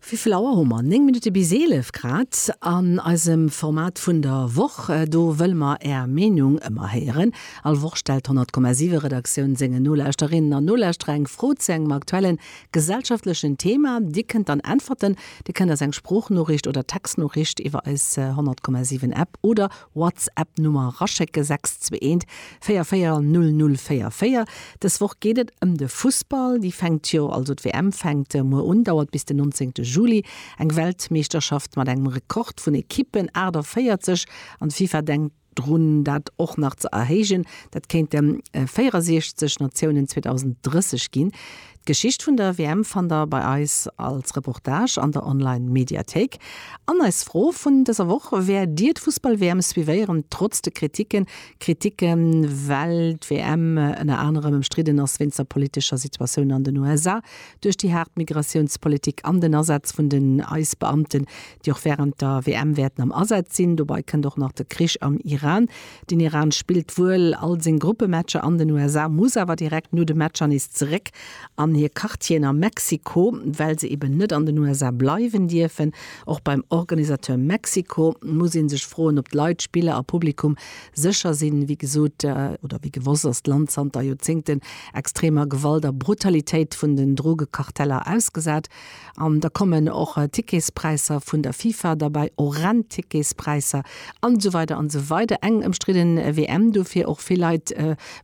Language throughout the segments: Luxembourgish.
Wéivill Auer hu mer? Néng Minutte bis eelef grad. An eisem Format vun der Woch, do wëlle mer Är Meenung ëmmer héieren. All Woch stellt d'Honnertkommasiwe Redaktioun sengen Nolauschterinnen an Nolauschterer eng Fro zu engem aktuellen gesellschaftlechen Thema. Dir kënnt dann äntwerten. Dir kënnt eis eng Sproochnoriicht oder Textnoriicht iwwer eis Honnertkommasiwen App oder WhatsApp Nummer raschécke 6214400044. Dës Woch geet et ëm de Fussball. Déi fänkt jo, also d'WM fänkt muer un, dauert bis den 19. Juli. Eng Weltmeeschterschaft mat engem Rekord vun Ekippen, 48, an d'FIFA denkt drun dat och nach ze erhéijen. Dat kéinte 64 Natiounen 2030 ginn. D'Geschicht vun der WM fannt der bei eis als Reportage an der Online Mediathéik. An eis Fro vun dëser Woch, Wäert Dir d'Fussball WM suivéieren, trotz de Kritiken? Kritiken, well d'WM ënner anerem ëmstridden ass wéinst der politescher Situatioun an den USA, duerch déi haart Migratiounspolitik an den Asaz vun den Eisbeamten, déi och wärend der WM wäerten am Asaz sinn. Dobei kënnt och nach de Krich am Iran. Den Iran spillt wuel all seng Gruppematcher an den USA, muss awer direkt no de Matcher nees zeréck an hir Quartieren a Mexiko, well se eben net an den USA bleiwen dierfen. Och beim Organisateur Mexiko muss ee sech froen, ob d'Leit, Spiller a Publikum sécher sinn. Wéi gesot, oder wéi gewosst, ass d'Land zanter Joerzéngten extremer Gewalt a Brutalitéit vun den Drogekarteller ausgesat. An da kommen och Ticketspräisser vun der FIFA derbei, horrend Ticketspräisser an esou weider an esou weider. Eng ëmstridden WM dofir och. Vill Leit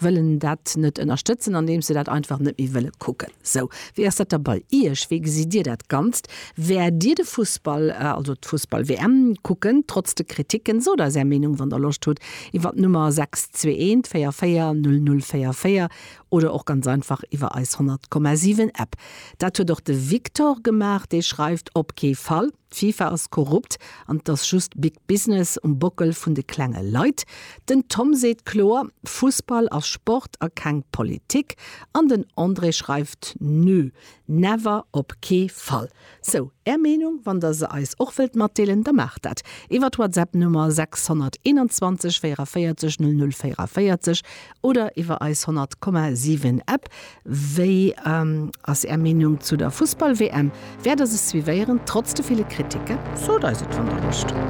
wëllen dat net ënnerstëtzen, andeems se dat einfach net méi wëlle kucken. Sou, wéi ass dat da bei Iech? Wéi gesitt Dir dat Ganzt? Wäert Dir de Fussball, also d'Fussball-WM kucken, trotz de Kriticken? Sot eis Är Meenung, wann Der Loscht hutt, iwwert d'Nummer 621 44 00 44 Oder och ganz einfach iwwer eis 100,7 App. Dat huet och de Victor gemaach, dee schreift, Op kee Fall! D'FIFA ass korrupt an et ass just Big Business um Bockel vun de klenge Leit. Den Tom seet kloer, Fussball ass Sport a keng Politik. An den André schreift, Nö! Never! Op kee Fall! Sou, Är Meenung, wann Der se eis och wëllt matdeelen, da maacht dat iwwer d'Whatsapp Nummer 621 44 00 44 oder iwwer eis 100,7 App. Wéi ass Är Meenung zu der Fussball-WM? Wäert Der se suivéieren, trotz de ville Kritike? Sot eis et, wann Der wosst.